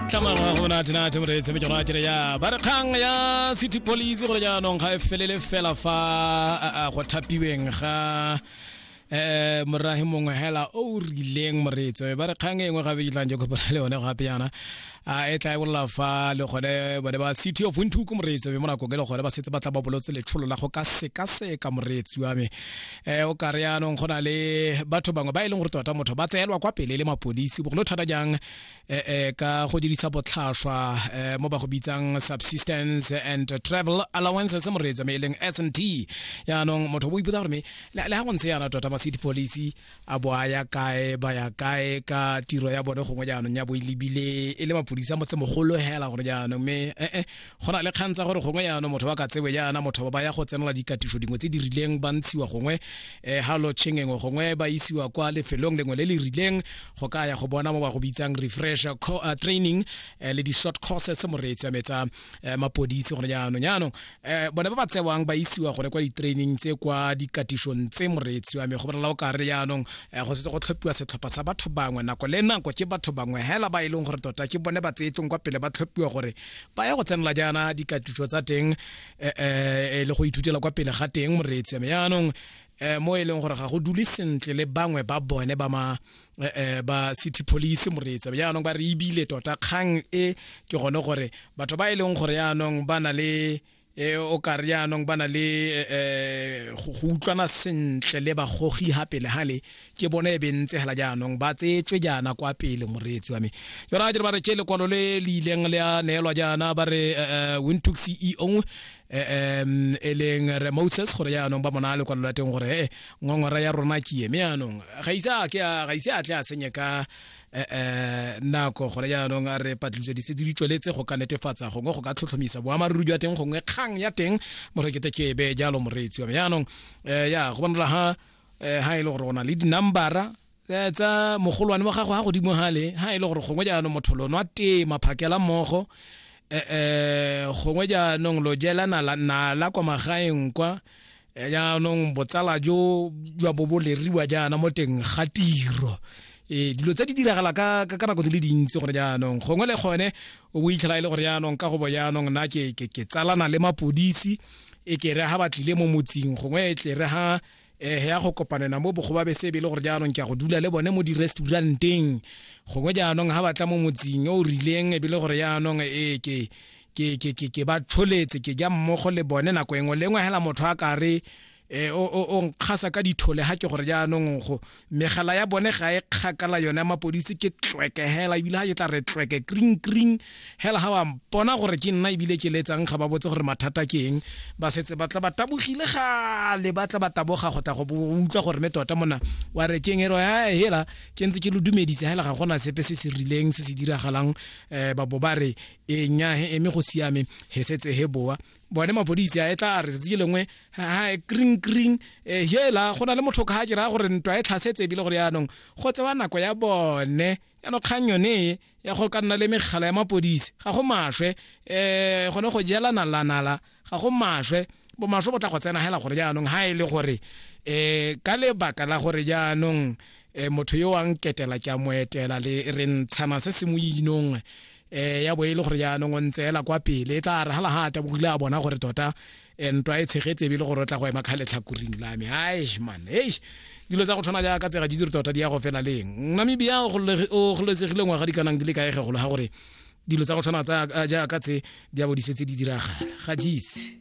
tlamangwa go natenate moreetse mejoro a kere ya ba re kgang ya city police gore jaanong ga e felele fela fa go thapiweng ga eh morahi mongwe hela o rileng moretso ba re kgang engwe gabe ke tlang je kopana le one gape yana a e tla e bolla fa le gone bone ba city of windhoek moretso be mona kokele gone ba setse ba tla ba bolotse letsholo la go ka seka seka moretsi wa me eh o kare yanong gona le batho bangwe ba e leng gore tota motho ba tseelwa kwa pele le mapodisi bogolo thata jang eh, eh, ka go dirisa botlhaswa eh, mo ba go bitsang subsistence and travel allowances mo reetsa me e leng s n t yaanong motho o bo ipotsa gore me le ga go ntse yana tota ba city police a bo a ya kae ba ya kae ka tiro ya bone gongwe jaanong ya bo e lebile e le mapodisa motse mogolo hela gore jaanong me ee go na le kgang tsa gore gongwe yana motho ba ka tsewe yana motho ba ya go tsenela dikatiso dingwe tse di rileng ba ntshiwa gongwe um ha lo tshengengwe gongwe ba isiwa kwa lefelong lengwe le le rileng go ka ya go bona mo ba go bitsang refresh eh, training eh, le di-short courses moreetso ya metsa mapodisi gone jaanong jaanong um bone ba ba tsewang ba isiwa gone kwa di-training tse kwa dikatisong tse moreetso ya me go bolela o ka re jaanong go setse go tlhophiwa setlhopha sa batho bangwe nako le nako ke batho bangwe hela ba e leng gore tota ke bone ba tseetsong kwa pele ba tlhophiwa gore ba ya go tsenela jaana dikatiso tsa teng eh, eh, e le go ithutela kwa pele ga teng moreetsi ya me yaanong eh, mo e leng gore ga go dule sentle le bangwe ba bone ba ma eh, eh, ba city police moreetsa yaanong ba re ebile tota kgang e ke gone gore batho ba e leng gore yaanong ba na le e o ka re jaanong ba na le um go utlwana sentle le bagogi ga pele gale ke bone e bentse fela jaanong ba tsetswe jaana kwa pele moreetsi wa me yona ga dire ba re ke lekwalo le le ileng le a neelwa jaana ba re um wintook ceo um e leng re moses gore jaanong ba mona lekwalo la teng gore e ngongora ya rona ke eme jaanong ga ise a tle a senye ka nako gone jaanong a re patlisiso di setse di tsweletse go ka netefatsa gongwe go ka tlhotlhomisa boammaaruri jwa teng gongwe kgang ya teng morekete kebe jalo moreetsi wa me jaanong ya go bonala ha ha e le gore o na le dinambara tsa mogolwane wa gago ga godimo gale ga e le gore gongwe jaanong motho lono a tema phakela mmogo um gongwe jaanong lo jela nala kwa magaeng kwa ya jaanong botsala jo jwa bo bo leriwa jaana mo teng ga tiro e dilo tse di diragala ka ka ka nako di le dintsi gore jaanong gongwe le gone o bo itlhela e le gore jaanong ka go bo jaanong nna ke ke ke tsalana le mapodisi e ke re ha ba tlile mo motsing gongwe e tle re ha eh ya go kopanela mo bogo ba be sebe le gore jaanong ke a go dula le bone mo di-restauranteng gongwe jaanong ha batla mo motsing o rileng e be le gore jaanong e ke ke ke ke ke ba tsholetse ke ja mmogo le bone nako engwe le engwe hela motho a ka re eh, o o- o nkgasa ka dithole ha ke gore jaanong go megala ya bone ga e kgakala yone ya mapodisi ke tlweke hela ebile ga ke tla re tlweke kring kring hela ga wa mpona gore ke nna ebile ke letsang ga ba botse gore mathata ke eng ba setse ba tla ba tabogile gale ba tla ba taboga go tla go bo- utlwa gore me tota mona wa re keng e re "Ah, hela ke ntse ke lo dumedise hela ga gona sepe se se rileng se se diragalang um ba bo ba re e nya he eme go siame he setse he boa bone mapodisi a e tla a re tsatsi lengwe ha kring kring e, hela go na le motho ka ke ra gore ntwa e tlhasetse ebile gore yaanong go tsewa nako ya bone yaanong kgang yone e ya go ka nna le megala ya mapodisi ga go maswe um gone go jela nalanala ga go maswe bomaswe bo tla go tsena hela gore jaanong ha e le gore um ka lebaka la gore jaanong um motho yo wa nketela ke a mo etela le re ntshana se se mo inong um ya bo e le gore jaanong o ntse ela kwa pele e tla re hala ga a tabogile a bona gore tota ntwa e tshegetse ebile gore o tla go ema kga letlhakoring la me aish man eish dilo tsa go tshwana jaaka tsega di dire tota di ya go fela leng namibia o gololesegile ngwaga di kanang di le kaegegolo ga gore dilo tsa go tshwana jaaka tse di a bo di setse di diragala ga jeitse